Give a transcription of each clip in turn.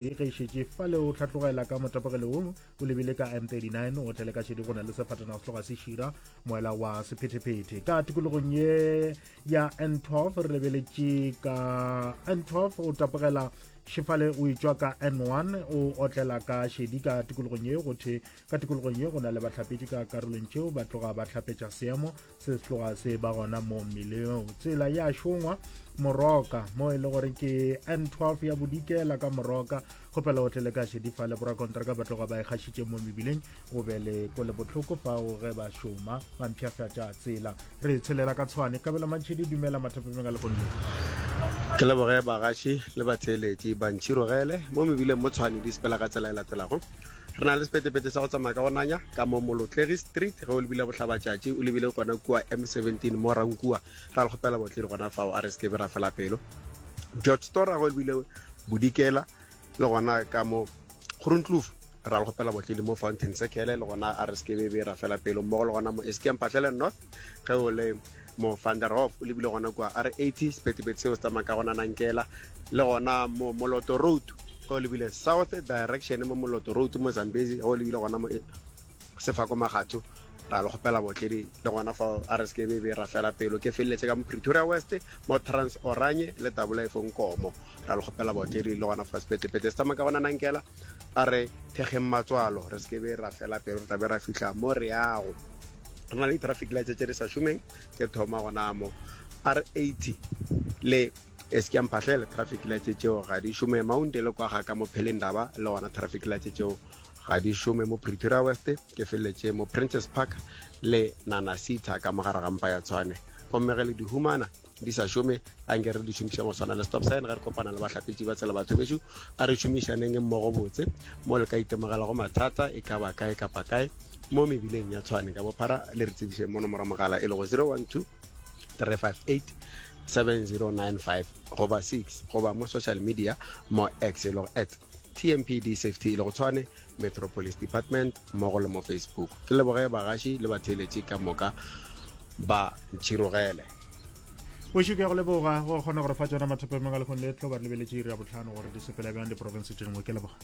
e gaišetše fa le o hlatlogela ka motapoge leolo o lebile ka m39 o tlele ka šedi go na le sefatana go tloga se šira moela wa sephetephete ka tikologong ye ya n12 re lebeletše ka n12 o tapogela šefale o etswa ka n1 o otlela ka šedi ka tikologong ye go the ka tikologong ye go na le bahlapetši ka karolong tšeo ba tloga ba hlapetša seemo se se tloga se ba gona mo mmileng tsela ya šongwa moroka mo e le gore ke n12 ya bodikela ka moroka kgopela o tle le ka šedifa le borakontraka ba tloga ba e kgašitše mo mebileng o be le ko le bohloko fao ge ba šoma ba mpšhafatša tsela re tshelela ka tshwane kabelo mantšhedi dumela mathapemeng a legonne ke leboge bagaši le batheeletši bantšhirogele mo mebileng mo tshwane di sepela ka tsela e latelago Re na le sepetepete sa go tsamaya ka go nanya ka mo Molotlegi Street, ge o lebile Bohlabatšatši, o lebile gona kua M17 mo Rankua, ra le kgopela botledi gona fao, a re se ke be ra fela pelo. George Stora, ge o lebile Bodikela, le gona ka mo Groenkloof, ra le kgopela botledi mo Fountain Circle, le gona a re se ke be ra fela pelo, mmogo le gona mo Eskempatlele North. ge o le mo van der hof o lebile gona kua r 80 sepetepete seo se tsamaya ka gona nankela le gona mo moloto road ge o lebile south direction mo moloto road mo zambezi ge o lebile gona mo sefako magatho ra le kgopela botledi le gona fa a re seke bebe ra fela pelo ke feleletse ka mo pretoria west mo trans oranye le tabola e fong komo ra le kgopela botledi le gona fa sepetepete se tsamaya ka gona nankela a re thekgeng matswalo re seke be ra fela pelo re tlabe ra fitlha mo re yago re na le di-traffic lights tse di sa šomeng tse thoma gona mo r eighty le e se ke mphatlhele traffic lights tšeo ga di šome mounte le kwa ga ka mo phelendaba le gona traffic lights tšeo ga di šome mo pretoria west ke feleletše mo princess park le nana sita ka mogare ga mpa ya tshwane gomme ge le di humana di sa šome a nke re di šomišang go tshwana le stop sign ge re kopana le bahlapetši ba tsela batho bešo a re šomišaneng mmogo botse mo le ka itemogelago mathata e ka ba kae kapa kae mo mebileng ya tshwane ka bophara le re tsebišeng mo nomoro mogala e lego 012 358 7095 goba 6 goba mo social media mo x e lego at tmpd safety e lego tshwane Metro Police Department mmogo le mo Facebook. Ke leboge bagaši le batheeletši ka moka ba ntšhirogele. Boši ke ya go leboga go kgona gore fa tsona mathopo emeng a lekgong le tlo ba re lebeletše iri ya botlhano gore di sepela bjang diporofense tše dingwe ke leboga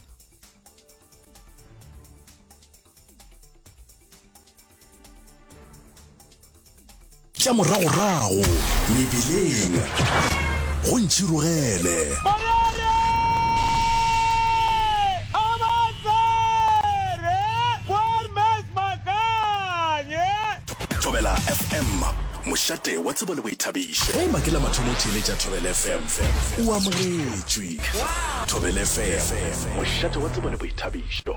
tša moragorago mebileng go ntšhirogele thobela fm mošate wa tsebo le boithabišo ge makela mathomo theeletša thobel fm o amogetšwe thobel fm mošate wa tsebo le boithabišo